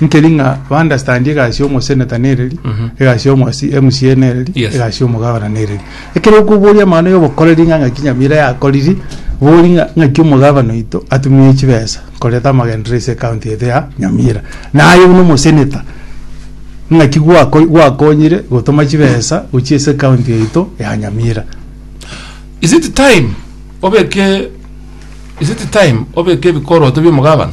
Nkeri ng'a ba understand egasi y'omoseneta nereri, egasi y'omosi MCA nereri, Yes. egasi y'omogabana nereri. Ekero okoboria amang'ana y'obokoreri ng'a ng'aki Nyamira yakoriri, bori ng'a ng'aki omogabana oito atumire chibesa koreta amagenderero ase ekaunti yaito ya Nyamira. Naye buna omoseneta, ng'aki gwako- gwakonyire gotoma chibesa gochia ase ekaunti yaito ya Nyamira. Is it time obeke is it time obeke ebikoroto bia omogabana?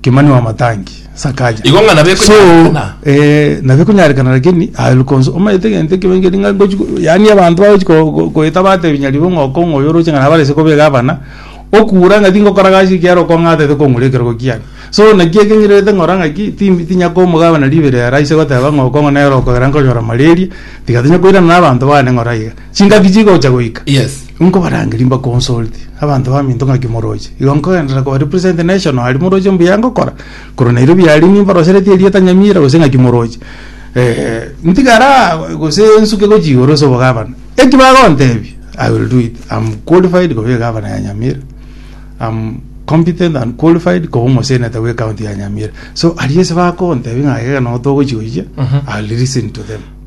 Kimani wa Matangi, Sakaja. Igo ng'a nabe So, ekonyarekana. eh, nabe ekonyarekana lakini alukonso omanyete egento ekebe nkeri ng'a ngochi ko- yaani abanto bagochi ko- ko- koeta batebi nyaribo ng'a oko ng'a oyo oroche ng'a nabare ase kobega abana, okura ng'a tingokora gasi ekiagera okong'atete kong'ura ekerogo kiane. So naki ekeng'irerete ng'ora ng'aki timi tinya komogabana ribere ere aise goteba ng'a oko ng'a nere okogera nkonyora malaria, tiga tonya koirana na abanto bane ng'ora iga. Chingaki chigocha goika? Yes. Nkobarangeria mbaconsulte abanto baminto ng'aki moroche. Igo nkogenderera kobarepresent national aria moroche mbuya ngokora. Korwa nairo biaria nimbaroseretie erieta Nyamira gose ng'aki moroche. Eh, ntigare aa gose nsuke gochia igoro ase obogabana. Eki bagontebia, I will do it. I'm qualified koba egabana ya Nyamira. I'm competent and qualified koba omoseneta bwe county ya Nyamira. So aria ase bakontebia ng'a iga notogochia gochia, I'll listen to them.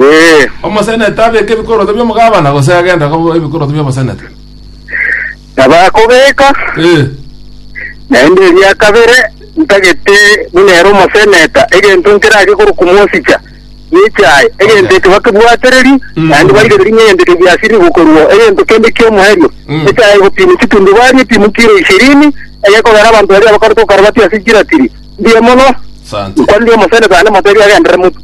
Ee. Omoseneta abeke ebikoroto bi'omogabana, gose agenda koba ebikoroto bi'omoseneta? Nabo akobeka, Ee. naende eria kabere ntagete buna ere omoseneta, egento nkerage korwa komosicha nechaye, egento ekio bakebwatereri, Mm. naende barigererie ng'a egento ekio giasirire gokorwa egento kende ki'omoerio. Mm. Echaye egopimwa chitundubari epimwe kiro ishirini, egekogera abanto baria abakorete okarabati ase chiratiri mbuya mono, Asante. nkwanire omoseneta naende motebie agenderere motu.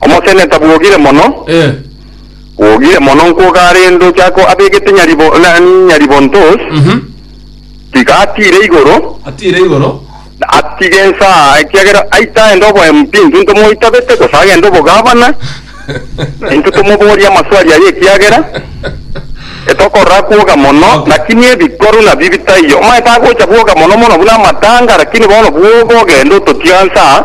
Omoseneta bwogire mono, Eh. bwogire mono nkwo kare ndochako abegete nyaribo na nyaribontos, Mhm. tiga atiire igoro, Atiire igoro. na atige ensa, ekiagera aite aende oboempi, intwe ntomoitabete, gose agende obogavana, na intwe tomoborie amaswali aye ekiagera etokorora kwoga mono, Okay. lakini ebikoru nabi bitaiyo. Omanyete agocha bwoga mono mono buna amatanga, lakini bono bwoga ogende ototiga nsa,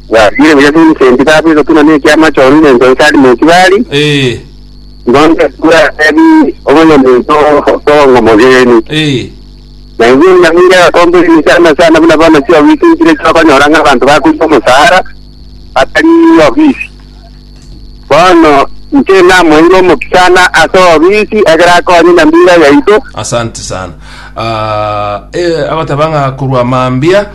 Bwariire buya buna esenti tabo egotuna na ekiama kio Rubeni ase Salimu Okibari, Ee, ngondo ekura Rebi omonyaminto bw'obong'o mogenyi. ee, Na inwe Benyamini agakomba ebiina chiane sana buna bono chiobisinkire chiokonyora ng'a abanto bakoigwa omosaara batari obisi. Bono inche namoeire omokia sana ase obisi ekero akonye nyamira yaito, Asante sana. Ah, eh, agoteba ng'a korwa mambia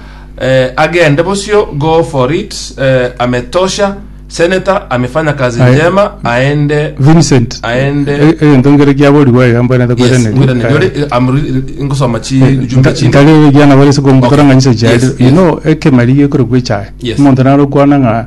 Eh, agende bosio go for it eh, ametosha senator amefanya kazi Aye. njema aende Vincent Aende. e- egento nkere kiaborigwa iga mbwene yes takwirane ngwirane nyore eh, I'm re- ngosoma chi jumbe chinde ntarebe giana bare se Okay. komukora ng'a nyiso chiari Yes, you yes. know ekemeri gekorokwa echae Yes. omonto naro kwana ng'a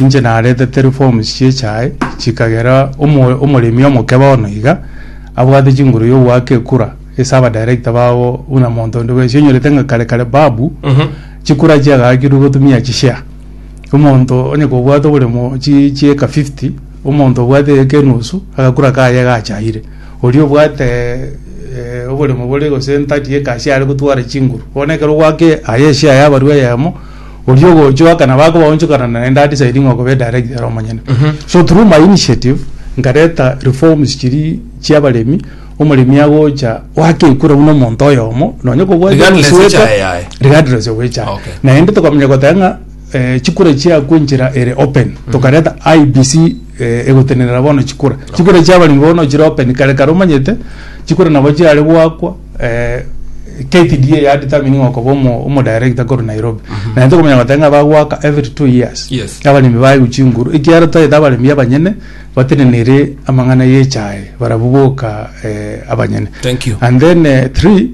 inche naretete reforms chi'echae chikagera omo omoremi omoke bono iga, abwate chinguru y'ogoaka ekura ase abadirector babo buna monto onde bwensi onyorete ng'a kare kare babu, chikura chiagakirwe gotumia chishare. Omonto onye kobwate oboremo chi chi'eka fifty, omonto obwate eeka enusu, agakura kaye gachaire. Oria obwate eh oboremo bore gose thirty acre aria are gotwara chinguru. Bono ekero ogoaka aye eshare yabarwa eyemo. oria ogochoka na bakoba onchokana na naende adecide ng'a okobe director ere omonyene so through my initiative nkareta reforms chiri chiabaremi omoremi agocha gwakekura buna omonto oyomo nonye kobwate Regardless omosweka, echae yaye. regardless of echae Okay. naende tokamanya goteba ng'a eh, chikura chiakwa enchera ere open tokareta IBC eh, egotenenera bono chikura chikura chiabaremi bono chire open kare kare omanyete chikura nabo chiare gwakwa eh, KTDA ya determining okoba omo, omo director koru Nairobi na nto komenya gotanga ng'a bagwaka every two years Yes. abaremi bayu chinguru ekiara taete abaremi abanyene batenenere amang'ana yechae barabu boka eh, abanyene Thank you. and then eh, three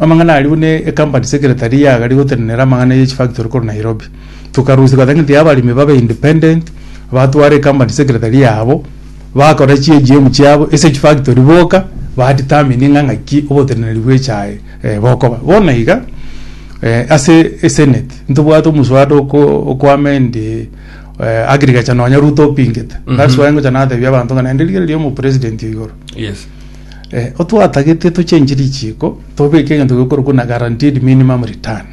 amang'ana ari bune ecompany secretary yagari gotenenera amang'ana ye chifactory koru Nairobi tukarusia gotanga nti abaremi babe independent batware ecompany secretary yabo Bakora chi'EGM chiabo ase chifactory boka ba determine ng'a ng'aki oboteneneri bw'echae bokoba. Bono iga ase esenate ntobwate omoswada oko oko amend agriculture nonya Ruto opingete. That's why ngocha natebia abanto ng'a naende rigereria oyo omopresident oyo igoro. Yes. Otwatagete tochenchi richiiko tobeke egento gekorokwa buna guaranteed minimum return.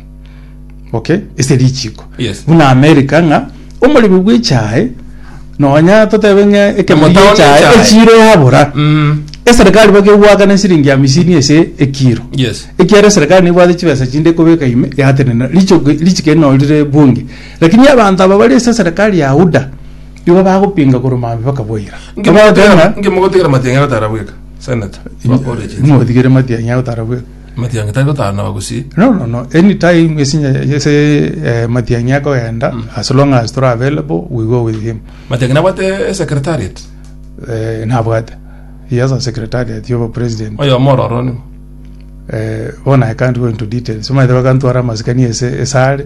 okay ase richiko Yes. buna america ng'a omoremi bw'echae nonya totebe ng'a ekemori Omotaoni gi'echae echae. echiro yabora Mm. eserikali bakegwaka na siringi hamisini ase ekiro Yes. ekiagera eserikali nebwate chibesa chinde kobeka ime yatenena richoko richiko eri nori rire bunge lakini abanto aba bari ase eserikali ya UDA igo bagopinga korwa maambia mpaka boira Ngemogotigera- ngemogotigera matiang'ira tarabweka senator wa origin. motigere matiang'i agotara bwe Amatiang'i tari gotaanaba gose. No, no, no, any time ase enye- ase eh, matiang'i akogenda as long as tore available we go with him Amatiang'i nabwate esecretariat. Eh, nabwate he has a secretariat yobo president Oyomo ororo nigo. Eh, bono I can't go into details omanyete bakantwara amasikani ase ase are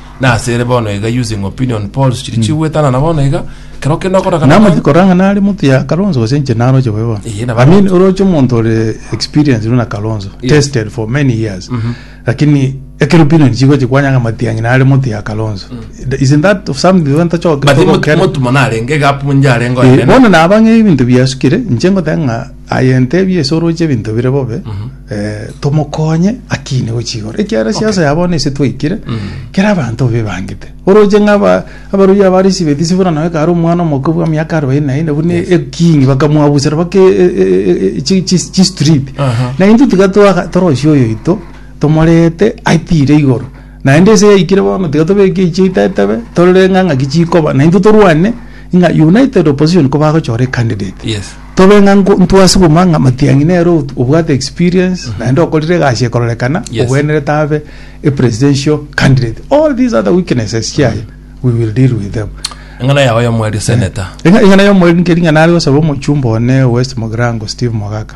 Nase ere bono iga using opinion polls chiri chigwetanana bono iga kero kende okora kana Namache kore korang'a nare motwe ya Kalonzo gose inche naroche bobe bono. Eye nabo I mean oroche omonto ore experienced buna Kalonzo, Yes. tested for many years. Lakini ekero opinion chigochi kwanyanga matiang'i nare motwe ya Kalonzo. Isn't that of something igo ntachoke but togokera? motumo narenge gapu njarenge Eh, oyonene bono nabang'e ebinto biasukire inche ngoteba ng'a Aye ntebie ase oroche ebinto bire bobe eh, tomokonye akine gochia igoro ekiagera esiasa ya bono ase twaikire kera abanto bebangete oroche ng'a aba- abaroria aba risi betisi buna nawe kare omwana omoke bwa miaka arobaini na ine buna ekingi bakamwabusera bake e- e- e- e- chi- chi- chistreet Aha. na intwe tiga twaga- torosia oyo oito tomorete aitire igoro Naende ense yaikire bono tiga tobeke echi tetebe torore ng'a ng'aki chikoba na intwe torwane ng'a united opposition ko bagochora ecandidate Yes. tobe ng'a nko- ntwasuguma ng'a matiang'i nere ot- obwate experience naende okorire egasi ekororekana Yes. obwenerete abe a presidential candidate all these other weaknesses chiaye we will deal with them eng'ana yao yomwerio seneta Eng'a- eng'ana yomweri nkeri ng'a nare gosaba omochumba one west mogirango steve mogaka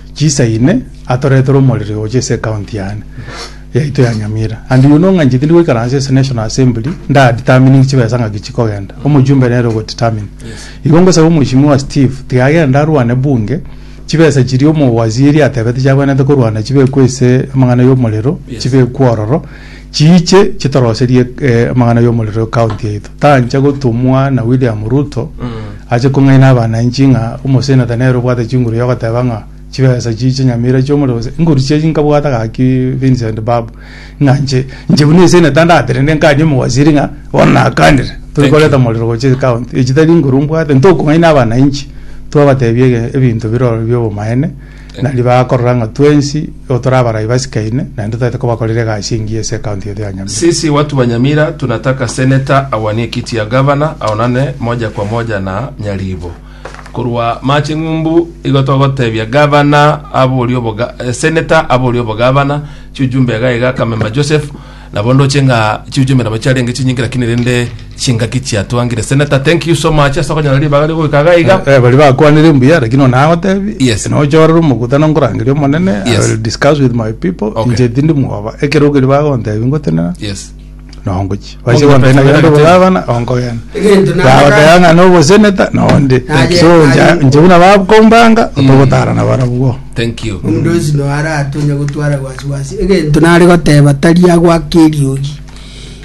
Chisa ine atoretere omoriri gocha ase ecounty yane yaito ya Nyamira and you know ng'a inche tindi goikaransa ase national assembly nda determining chibesa ng'aki chikogenda omojumbe nere ogo determine igo ngosaba omweshimiwa Steve tiga agende arwane bunge chibesa chiria omo waziri atebete chiabwenerete korwana chibekwe ase amang'ana ya omorero chibekwe ororo Chiiche chitoroserie amang'ana y'omorero ekaunti yaito. Tancha gotumwa na William Ruto ache kong'aina abananchi ng'a omoseneta nere obwate chinguru yogoteba ng'a chibesa chiiche nyamira chiomorero gose inguru chiaye nkabwata gaki Vincent Babu ng'a nche nche buna eseneta ndaterende nkanie omowaziri ng'a bono nakanire tore koreta omorero gochia ekaunti. Echitari inguru mbwate ntokong'aina abananchi twabatebia ebinto biroro biobomaene. na ribaga korora ng'a twensi igo tore abarai basikaine, naende toete kobakorera egasi engiya ase ecounty eye ya Nyamira. Sisi watu wa Nyamira tunataka senator awanie ekiti ya gavana aonane moja kwa moja na Nyaribo korwa Mache Ng'umbu igo togotebia gavana aborie oboga eh, senator aborie obogavana chiujumbe iga iga Kamemba Joseph Nabo ndoche ng'a chiuju emeremo chiarenge chinyinge lakini rende chingaki chiatwangire. Senator thank you so much ase okonyora ribaga ria goika iga iga. Eh, bari bakwanire mbuya lakini nonye nagotebi Yes. nonye ochorere omokutano nkorangeria omonene I Yes. will discuss with my people Okay. inche tindi mwoba ekero okeria bagontebi ngotenena Yes. nongochi Onge basi gontena petero gende gete. obogabana onkogenda Egento nanga- bagoteba ng'a noboseneta nonde Naye- so naye- nche buna bakombanga otogotarana barabwo Thank you. Omonto onsi noaratonye gotwara wasiwasi egento nare goteba tari agwake eriogi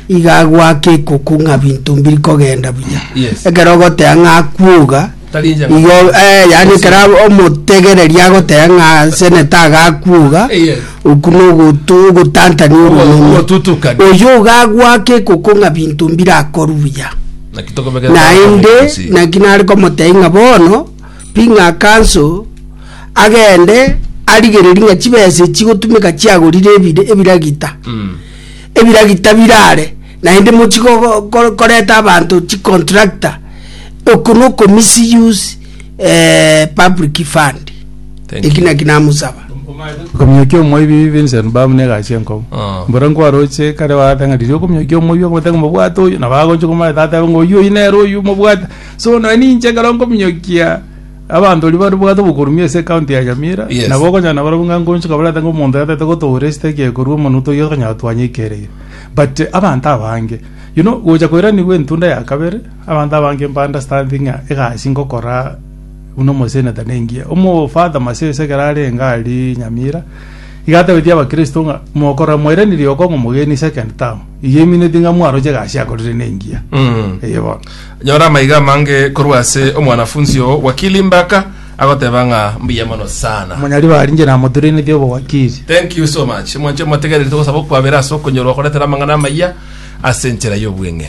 iga agwake ekoko ng'a binto mbiri kogenda buya Yes. ekero ogoteba ng'a akwoga Tari inche ng'a- igo eh, yaani ekero ab- omotegereri agoteba ng'a seneta iga akwoga Eh, yes. oku nogotu- ogotantania Ogo- oromeme ogotutukana. oyo iga agwake ekoko ng'a binto mbire akoru buya Naki tokobekera naende twakomeria gusii. naki nare komotebia ng'a bono Ring'akanso agende arigererie ng'a chibesa echi chigotumeka chiagorire ebire ebiragita, ebiragita birare naende mochi go- go- go- koreta abanto chicontractor, oko na oko misuse eh, public fund. Thank Eki you. naki namosaba. Komiokia omoibi Vincent Bam ne egasi enkomo. Ah. Mbora nkwaroche kare baatang'a riria okomiokia omoibi okomotanga mobwate oyo na bagocha komanyete atebe ng'a oyio oyi nere oyu mobwate. So nonya ninche ekero nkominyokia abanto baria baribwate obokurumbia ase ekaunti ya Nyamira, Yes. nabo okonyora nabarabwo ng'a nkonchuka barete ng'a omonto yatete gotoora esiteki ekorwa omonwe toiyo tokonyara twanye ekereire. But abanto abange, you know, gocha koiranigwa entunda ya kabere, abanto abange mba understanding ng'a egasi ngokora buna omoseneta nengiya. Omo Father Masese ekero arenge aria Nyamira, iga atabetie abakristo ng'a mokora mwairanirie okong'a omogeni second term, eyio emineti ng'a mwaroche egasi akorire nengiya. Mm. Eye bono. Nyora amaiga amange korwa ase omwanafunsi oo, Wakili Mbaka agoteba ng'a mbuya mono sana. Omonyaribare arinche namoturenetie obowakili. Thank you so much. Mwanche mwategereri togosaba okwabera ase okonyorwa okoretera amang'ana amayia ase enchera y'obweng'e.